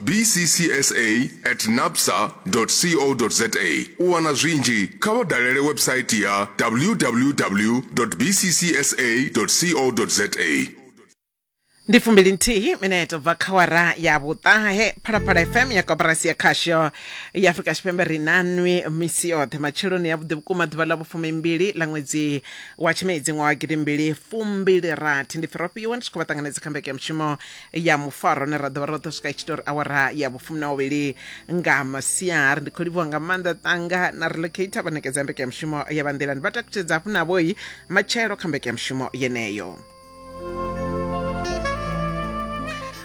bccsa at napsa co za u wana zwinzhi kha vha dalele website ya www bccsa co za ndi fumbili nthihi mineto bva kha wara ya vhuṱahe phalaphala fm ya koporasi ya khasho ya afrika tshipembe ri nanwi misi yoṱhe matsheloni ya vhuḓi vhukuma ḓuvha ḽa vhufumimbili ḽa ṅwedzi wa tshimedzi ṅwaha wa gidimbili fumbili rathi ndi firofhiwa ndi tshi khou vha ṱanganedza kha mbeke ya mushumo ya mufaro ne ra ḓovha ro ḓo swika i tshi tori awara ya vhufumi na vhuvhili nga masiari ndi khou livhuwa nga maanḓa tanga na relocator vha ṋekedza mbeke ya mushumo ya vhanḓilani vha takutshedza hafhu navhoi matshelo kha mbeke ya mushumo yeneyo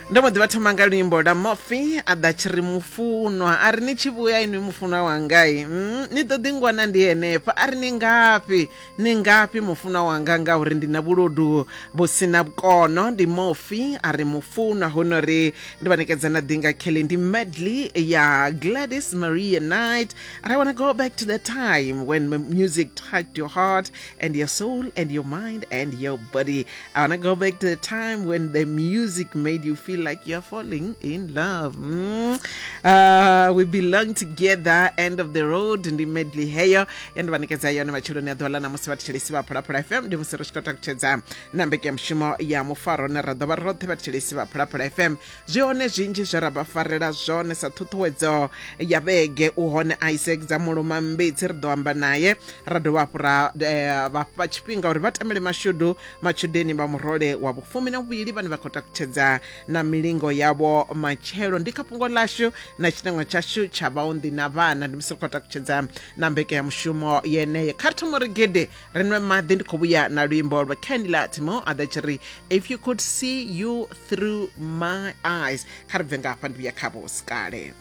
ndo mbo ḓi vha thoma nga luimbo la mofi a ḓa tshi ri mufunwa a ri ni tshi vhuya inwi mufunwa wangai mm, ni ḓo ḓi ngwana ndi henefha a ri ni ngafhi Ni ngafhi mufunwa wanga ngauri ndi na vhuludu vhu si na vhukono ndi mofi a ri mufunwa huno ri ndi vha nekedza na ḓinga kelly ndi medley ya gladys maria night and i want to go back to the time when m- music touched your heart and your soul and your mind and your body I want to go back to the time when the music made you feel like you're falling in love. Mm. Uh, we belong together, end of the road, ndi medley heyo yandivanekedza yone matshiloni a ḓola na musi vhathetshelesi vha phulaphula fm ndi musi ri tshi khou takutshedza na mbekemushumo ya mufaro ne ra ḓo vha roṱhe vhathetshelesi vha phulaphula fm zwi hone zwinzhi zwe ra vha farela zwone sa ṱhuṱhuwedzo ya vhege u hone isaac dza muluma mbitsi ri ḓo amba naye ra dovha hafhu ra eh, vha fha tshifhinga uri vha tamele mashudu matshudeni vha murole wa vhufumi na vhuvhili vhane vha khou takutshedza na milingo yavho matshelo ndi kha fhungo lashu na tshinangwa tshashu tsha vhaunḓi na vhana ndi musi ri khou takutshedza na mbekanyamushumo yeneyo kha ri thoma uri gede ri nwe maḓi ndi khou vhuya na luimbo lwa candila timo a ḓa tshi ri if you could see you through my eyes kha ri bve nga hafha ndi vhuya khavho sikale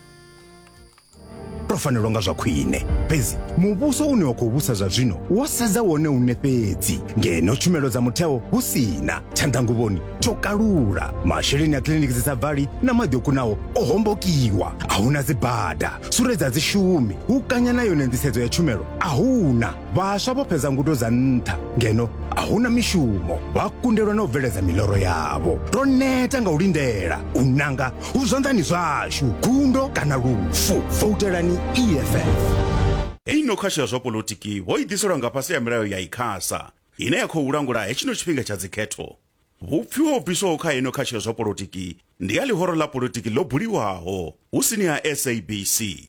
ro fanelwa nga zwa khwine fhedzi muvhuso une wa khou vhusa zwa zwino wo sedza wone une fhedzi ngeno tshumelo dza mutheo hu sina tshanḓanguvhoni tsho kalula masheleni a kiliniki dzi sa bvali na maḓi o kunaho o hombokiwa a huna dzibada sure dza dzishumi hu kanya na yone nḓisedzo ya tshumelo a huna vhaswa vho fhedza ngudo dza nṱha ngeno a hu na mishumo vha kundelwa na u bveledza miloro yavho ro neta nga u lindela u nanga hu zwanḓani zwashu gundo kana lufu voutelani eff i no khasho ya zwa polotiki ho i ḓiselwa nga fhasi ya milayo ya ikhasa ine ya khou langula hetshino tshifhinga tsha dzikhetho vhupfiwa ho bviswaho kha ino khasho ya zwa polotiki ndi ya ḽihoro ḽa polotiki ḽo buliwaho hu sini ha sabc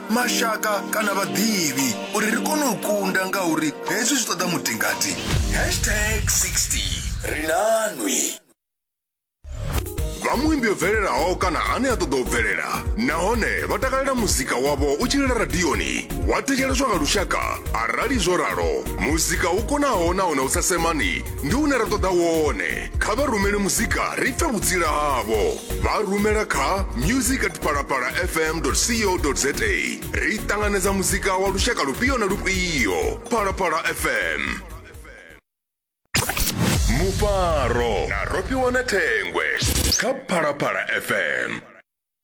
mashaka kana vhaḓivhi uri ri kone u kunda ngauri hezwi zwi ṱoḓa mutingati hashtag 60 ri nanwi vha muimbi o bvelelaho kana ane a ṱoḓa u bvelela nahone vha takalela muzika wavho u tshilela radioni wa thetsheleswa nga lushaka arali zwo ralo muzika u konaho nahone u sa semani ndi une ra ṱoḓa wone kha vha rumele muzika ri pfe vhutsila havho vha rumela kha music at palapala fm co za ri ṱanganedza muzika wa lushaka lufhio na lufhio palapala fm mufaro na rofhiwa na thengwe kha phalaphala fm